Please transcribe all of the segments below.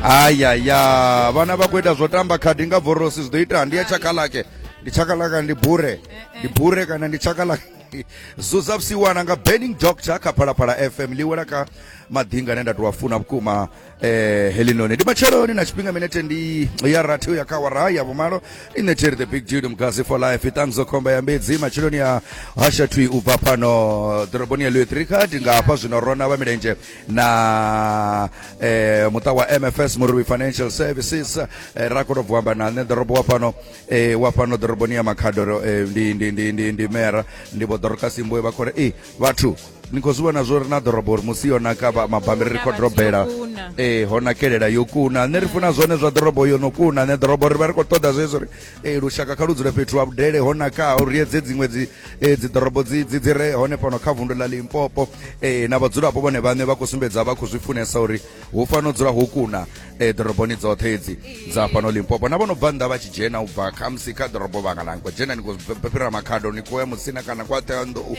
ayaya vana va ku ita zvo tamba khadi nga vorosi zwi ḓo ita ndi ya tshakalake ndi tshakalaka ndi bure ndi bure kana ndi tshakalaka zuza vhusiwana nga burning doctor kha phalaphala fm ḽi wela kha maḓinga ane nda tou a funa vhukuma eh, helinoni ndi matsheloni na tshifhinga minete ndi ya rathi u ya kha wara ya vhumalo i neteri the big dude mgazi for life iṱanguzo khomba ya mbedzi matsheloni ya hashatwi u bva pano ḓoroboni ya luetrikha ndi nga hafha zwino rona vha milenzhe na eh, muta wa mfs murui financial services eh, ra koto vuamba na nṋe ḓorobo wa fhano eh, wa fhano ḓoroboni ya makhadoro eh, ndi, ndi, ndi, ndi, ndi mera ndi vho ḓorokasi mboe vha khore e vhathu ni khou zwi vhona zwo ri na ḓorobo uri musi yo naka vha- mabammbiri ri khou dorobela e ho nakelela yo kuna nṋe ri funa zwone zwa ḓorobo yo no kuna nṋe ḓorobo ri vha ri khou ṱoḓa zwezwo ri e lushaka kha lu dzule fhethu ha vhudele ho nakaho ri edze dziṅwe dzi e dziḓorobo dzi dzi dzi re hone fhano kha vundu ḽa limpopo e na vhadzulapo vhone vhaṋe vha khou sumbedza vha khou zwi funesa uri hu fano dzula ho kuna e ḓoroboni dzoṱhe edzi dza fhano limpopo na vho no bva nnḓa vha tshi dzhena u bva khamusi kha ḓorobo vhanga na nko dzhena ni khou fhira makhado ni khou ya musina kana kwa ṱeanḓou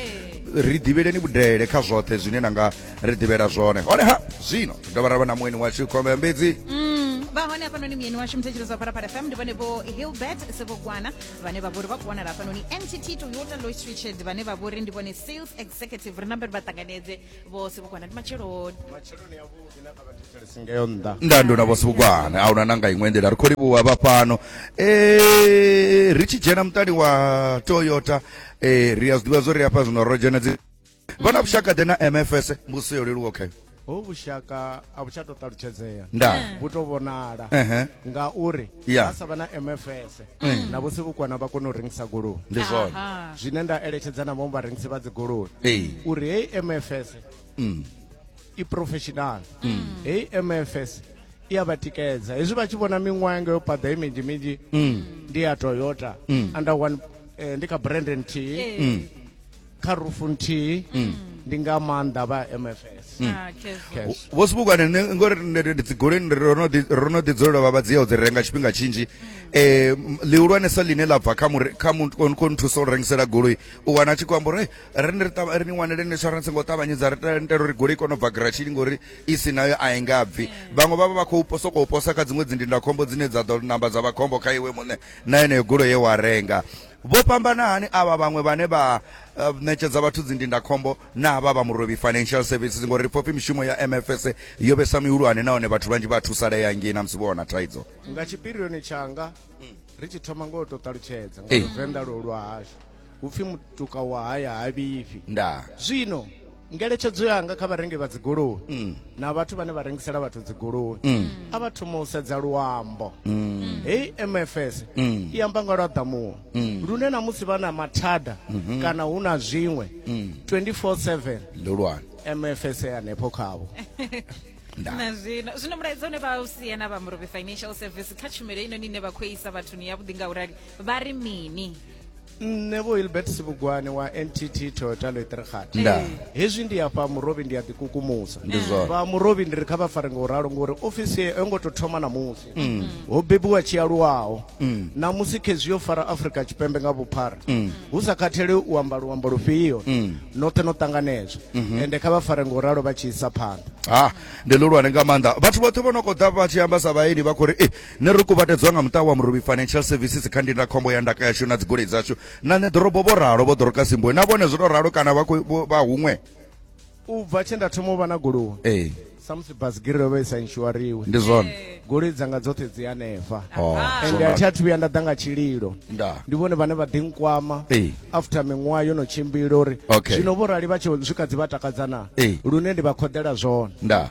ri ḓivheleni vhudele kha zwoṱhe zwine na nga ri ḓivhela zwone hone ha zwino ri dovha ra vha na mueni washu khombe ya mbedzi mm, vha hone hafhanoni muyeni washu mthetshelezi wa pharapara fm ndi vhone vho hilbert sevhogwana vhane vha vhori vha khou wanala hafhanoni nct toyota lois richard vhane vha vhori ndi vhone sales executive ri namberi vha ṱanganedze vhose vhukwana ndi matsheloni matsheloni avhuḓi na kha vhathetshelesi ngeyo nnḓa nda ndo na vhose vhukwana a huna na nga iṅwe nḓila ri khou livhuwa vha fhano um ri tshi dzhena muṱani wa toyota um ri a zwi ḓivha zwo ri hafha zwino ro dzhena dzi vha na vhushaka ḓe na mfs mbuso yo leluwa khayo ho vhushaka a vhu tsha to ṱalutshedzea nda vhu to vhonala Ehe. ngauri Yeah. ha sa vha na mfs na vho sivhukwana vha kona u rengisa goloi ndi zwone Aha. zwine nda eletshedza na vhaṅwe vharengisi vha dzigoloi Ee. uri heyi mfs Mm. i professional heyi mfs i a vha tikedza hezwi vha tshi vhona miṅwaha yanga yo paḓa i minzhi minzhi ndi ya toyota under one eh, ndi kha brand nthihi kha rufu nthihi mm. ndi nga maanḓa vha mfs mm. ah, vho sibukwane nṋe ngori ndi dzigoleni ro no ḓi dzulela vha vha dzi ya u dzi renga tshifhinga tshinzhi um lihulwanesa line ḽa bva kha nthusa u rengisela goloi u wana a tshi khou amba uri ri ni ri ni wanele insurance ngo ṱavhanyedza ri tela uri goloi kone u bva gratshini ngori i si nayo a i nga bvi vhaṅwe vha vha vha khou sokou posa kha dziṅwe dzindindakhombo dzine dza ḓo namba dza vha khombo kha iwe muṋe na yeneyo goloi ye wa renga Vho fhambana hani avha vhaṅwe vhane vha uh, ṋetshedza vhathu dzindindakhombo na vha vha Murovhi Financial Services ngori ri pfopfi mishumo ya MFS yo vhesa mihulwane nahone vhathu vhanzhi vha thusalea ngei na musi vho wana thaidzo nga tshipirioni tshanga ri tshi thoma ngo to ṱalutshedza nga Venḓa lwo lwa hashu hupfi mutuka wa haya ha vhifhi nda zwino ngeletshedzo yanga kha vharengi vha dzigoloi mm. na vhathu vhane vha rengisela vhathu dzigoloi mm. a vha thoma u sedza luambo mm. hei mfs i amba nga lwa ḓamuwo lune na musi vha na mathada mm-hmm. kana hu na zwiṅwe 24/7 ndi lwani mfs hanefho khavho na zwino zwino mulaedza une vha u sia na vha murobe financial service kha tshumelo ino ni ne vha khou isa vhathuni yavhuḓi nga u rali vha ri mini nṋe vho hilbert sibugwane wa ntt toyota loitregat Nda. hezwi ndi afha murovhi ndi a ḓikukumusa Ndi zwone. vha murovhi ndi ri kha vha fare nga u ralo ngori ofisi yo ngo tou thoma namusi Mm. ho bebiwa tshi aluwaho Mm. namusi khezwi yo fara afrika tshipembe nga vhuphara Mm. hu sa khathele u amba luambo lufhio Mm. noṱhe no ṱanganedzwa Mhm. ende kha vha fare nga u ralo vha tshi isa phanḓa ha ndi luhulwane nga maanḓa vhathu vhoṱhe vho no kho ḓa vha tshi amba sa vhaeni vha khou ri eh Nṋe ro kuvhatedzwa nga muṱa wa Muruvhi Financial Services kha ndindakhombo ya ndaka yashu na dzigoloi dzashu na nṋe ḓorobo, vho ralo Vho Dorcas Mboe. Na vhone zwo tou ralo kana vha khou vha huṅwe? U bva tshe nda thoma u vha na goloi Ee, samusi basigiri yo vha i sa inshuariwe ndi zwone. goloi dzanga dzoṱhe dzi hanefha Oh, zwo ende a thi naka. athu vhuya nda ḓa nga tshililo Nda. ndi vhone vhane vha ḓi nkwama Ee. after miṅwaha yo no tshimbila uri Okay. zwino vho rali vha tshi swika dzi vha takadza na Ee. lune ndi vha khoḓela zwone Nda.